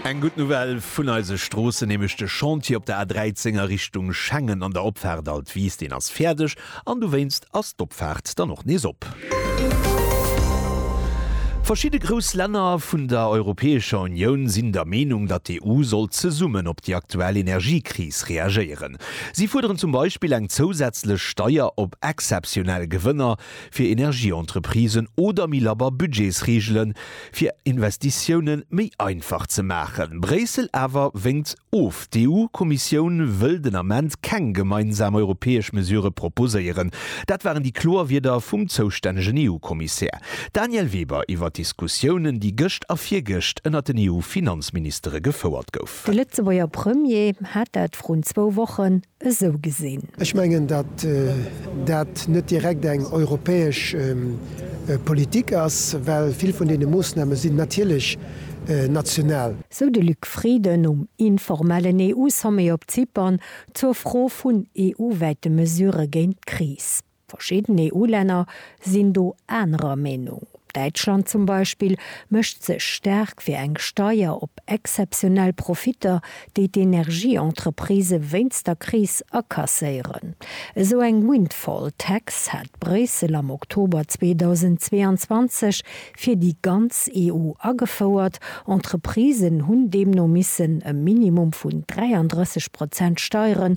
Eng gutt Nouvelle vun eise Stroossen, nämlech de Chantier op der A13 a Richtung Schengen an der Opfaart Alt Wiis, deen ass fäerdeg an dowéinst ass d'Opfaart dann och nees op. Verschidde grouss Länner vun der Europäescher Unioun sinn der Meenung, datt d'EU soll zesummen op déi aktuell Energiekris reagéieren. Si fuerderen zum Beispill eng zousätzlech Steier op exzeptionell Gewënner, fir Energieentreprisen oder méi labber Budgetsreegele fir Investitioune méi einfach ze maachen. Bréissel awer wénkt of. D'EU-Kommissioun wëll den Ament keng gemeinsam europäesch Mesurë proposéieren. Dat waren déi kloer Wierder vum zoustännegen EU-Kommissär Daniel Weber iwwer d'Diskussiounen, déi gëscht a virgëscht ënnert den EU-Finanzministere gefouert gouf. De Lëtzebuerger Premier hat dat vrun zwou Wochen esou gesinn. Ech mengen, datt dat net direkt eng europäesch Politik ass, well vill vun deene Moosname sinn natierlech national. Sou de Luc Frieden um informellen EU-Sommet op Zypern zur Fro vun EU-wäite Mesurë géint d'Kris. Verschidden EU-Länner sinn do anerer Meenung. Däitschland zum Beispill mécht sech staark fir eng Steier op exzeptionell Profitter, déi d'Energie-Entreprisë wéinst der Kris akasséieren. Esou eng Windfall Tax hat Bréissel am Oktober 2022 fir déi ganz EU agefouert. Entreprisen hunn deemno missen e Minimum vun 33 Prozent Steieren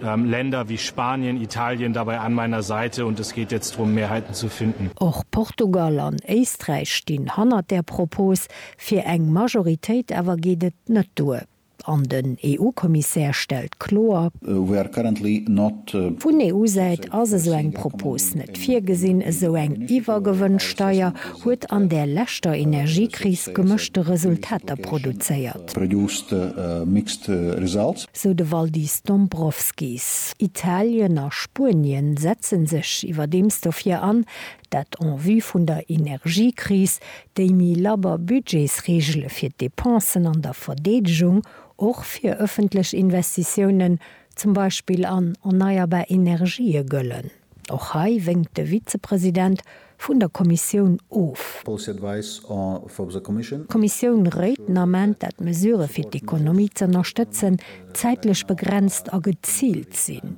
Länder wie Spanien, Italien dabei an meiner Seite und es geht jetzt drum Mehrheiten zu finden. Och Portugal an Éisträich stinn hannert där Propos fir eng Majoritéit, awer geet et net duer an den EU-Kommissär stellt kloer, Vun EU-Säit ass esou eng Propos net virgesinn, esou eng Iwwergewënnsteier huet an där leschter Energiekris gemëschte Resultater produzéiert. sou de Valdis Dombrovskis. Italien a Spuenien setzen sech iwwerdeems dofir an, dat en vue vun der Energiekris, déi méi labber Budgetsreegele fir d'Depensen an der Verdeedegung, och fir ëffentlech Investitiounen, zum Beispill an erneierbar Energië, gëllen. Och hei wénkt de Vizepresident vun der Kommissioun of. D'Kommissioun réit den Ament, dat d'Mesurë fir d'Ekonomie z'ënnerstëtzen zäitlech begrenzt a geziilt sinn.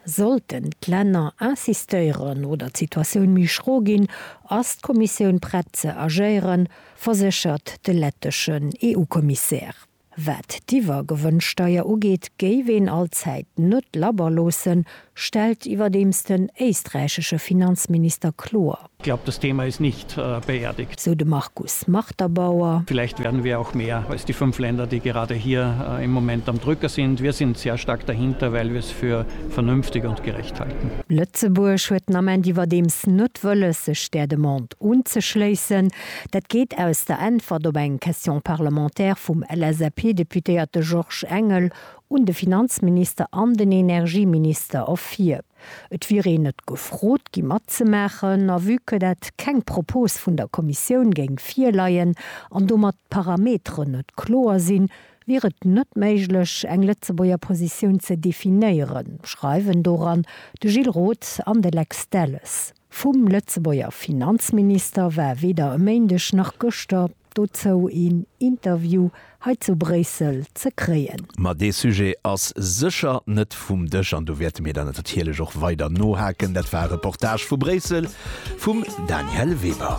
Sollten d'Länner insistéieren oder d'Situatioun méi schro ginn, ass d'Kommissioun prett ze agéieren, verséchert de letteschen EU-Kommissär. Wat d'Iwwergewënnsteier ugeet, géif een allzäit net labber loossen, stellt iwwerdeems den éisträichesche Finanzminister kloer. Ich glaube, das Thema ist nicht beerdigt. Sou de Markus Marterbauer. Vielleicht werden wir auch mehr als die fünf Länder, die gerade hier im Moment am Drücker sind. Wir sind sehr stark dahinter, weil wir es für vernünftig und gerecht halten. Lëtzebuerg huet den Ament iwwerdeems net wëlles, sech där Demande unzeschléissen. Dat geet aus der Äntwert op eng Question parlementaire vum LSAP-Deputéierte Georges Engel un de Finanzminister an den Energieminister ervir. Et wier een net gefrot gi matzemaachen a vue que dat keng Propos vun der Kommissioun géing virleien an domat d'Parameteren net kloer sinn, wier et net méiglech eng Lëtzebuerger Positioun ze definéieren, schreiwen doran de Gilles Roth an de Lex Delles. Vum Lëtzebuerger Finanzminister war weder e Méindeg nach gëschter dozou een Interview hei zu Bréissel ze kréien. Ma dee Sujet ass sécher net vum Dësch an do wäerte mir der natirlech och weider nohaken. Dat war e Reportage vu Bréissel vum Danièle Weber.